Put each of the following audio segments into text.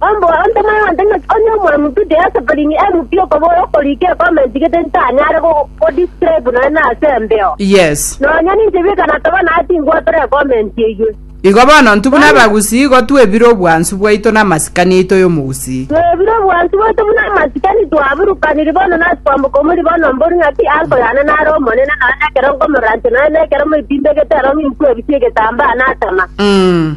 Omboe onde moyonde ng'a onye omwami Budi ase Palini MP okobora okorika ekomenti gete ntanyare gogo-describe nonye nase embeo. Yes. Nonya ninche bika nataba naye tingwatora ekomenti eyio. Igo bono intwe buna Bono. abagusii igo twebire obwansu bwaito na amasikani aito y'omogusii. Twebire obwansu bwaito buna amasikani twaburukaniri bono nase kwamboka omori bono mbori ng'aki uncle yane nare omonene nonye nekero nkomoranche nonye nekero moitimbegete ero ng'inkuebisie egetambaa natama. Umm.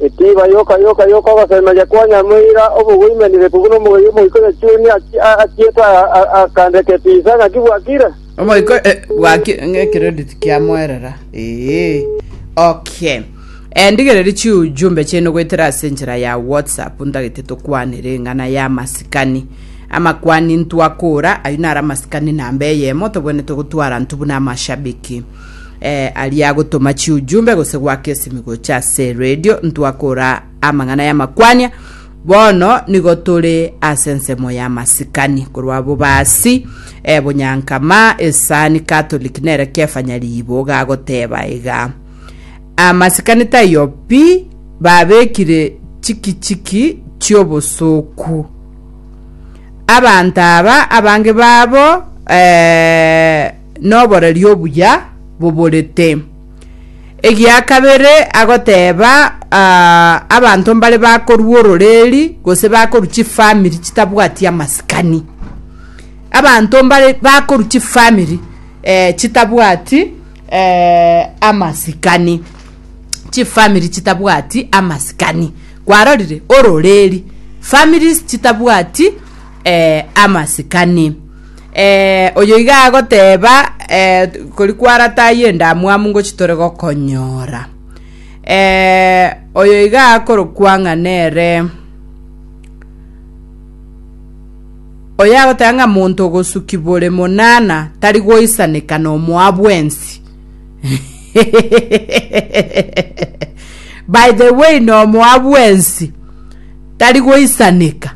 Etiba yoka yoka y'ogosemeria kwa Nyamura obogwe imenire kobuna omoyio omoika o Yechuni achiete akande ketiisa ng'aki bwakire. Omoika eh, bwaki ng'a credit kiamoerera. Eh. Okay. Eh, ndigereri chi ujumbe chene goetera ase enchera ya WhatsApp ntagete tokwanere eng'ana ya masikani. Amakwani ntwakora, ayio nara masikani namba eyemo tobwenete gotwara ntubuna amashabiki. eh, aria agotoma chiujumbe gose gwaka esimigo chia ase radio ntwakora amang'ana y'amakwania bono nigo tore ase ensemo ya masikani korwa bobasi eh, bonyankama esani catholic nere kefanya riibo gagoteba iga amasikani taiyo pi babekire chikichiki chiobosoku abanto aba abange babo eh, noboreri obuya boborete. Egia kabere agoteba uh, abanto mbare bakorua ororeri gose bakorua chifamiri chitabwati amasikani abanto mbare bakorua chifamiri eh, chitabwati eh, amasikani chifamiri chitabwati amasikani kwarorire ororeri families chitabwati eh, amasikani Eh, oyo iga agoteba eh, kori kwaratayo endamwamu ngochi tore gokonyora. Eh, oyo iga akorokwa ng'a nere oyo agoteba ng'a monto ogosuki bore monana tari goisaneka nomoa bwensi. By the way, nomoa bwensi. Tari goisaneka.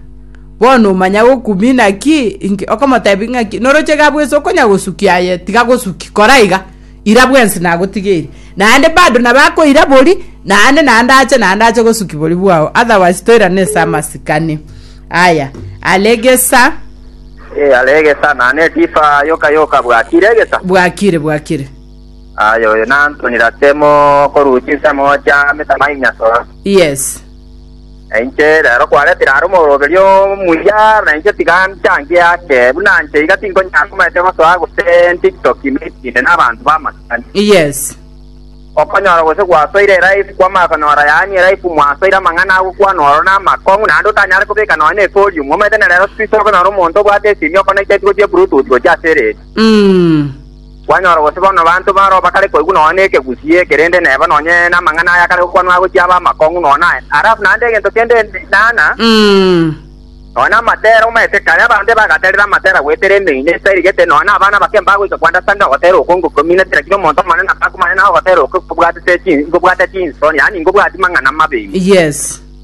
Bono omanya gokumina ki? Inki? Okomotebi ng'aki? Noroche iga bwensi okonya gosukia aye, tiga gosuki. Kora iga. Ira bwensi nagotigeri. Naende bado nabo akoira bori, naende naende ache naende ache gosuki bori bwao. Otherwise toirane ase amasikani. Aya. Ara egesa. Eh, ara egesa, na netifa yoka yoka bwakire egesa. Bwakire, bwakire. Aye oyo nantonire asemo koruchi nsemo chia metama inya soro. Yes. Na inche rero kwaretire are omoroberio omuya, na inche tiga nchangie ake. Buna nche iga tinkonyara komaete gosoa gose ntiktoki meeting'ine n'abanto b'amasikani. Yes. Okonyora gose gwasoire elife kwama okonyora yaani elife mwasoire amang'ana agokwana oro namakong'u naende otanyare kobeka nonya ne volume omanyete na rero squeeze okonyora omonto obwate esimi okona icheti gochia bluetooth gochia ase radio. Mm. Kwanyora gose bono abanto baroo bakare koigwa nonya nekegusie eke, rende neba nonya namang'ana aya akare gokwanwa agochia abe amakong'u nonya aye. Harafu naende egento kende enana, nonya namatera omanyete kare abande bagaterera amatera goetera emeino etarigete, nonya nabana abake mbagoika kwanda sande ogotera oko ngokominetera kira omonto omonene abakumanye naye ogotera oko nkobwatete chin nkobwate chinsoni, yaani nkobwati mang'ana amabe ime. Yes.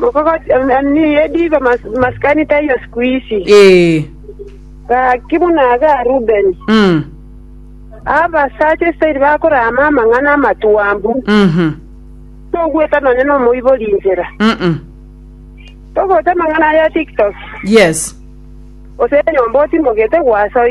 Mokogoti em- em, ni ediba mas- maskani taiyo siku hizi. Ee. Gaki buna aga Rubeni. Mm. Abasacha Israeli bakorama amang'ana amatuambu. Mhm. Togweta nonya nomoibori inchera. Mm-mm. Togweta amang'ana aya TikTok. Yes. Ose nyomba otimogete gwasoire.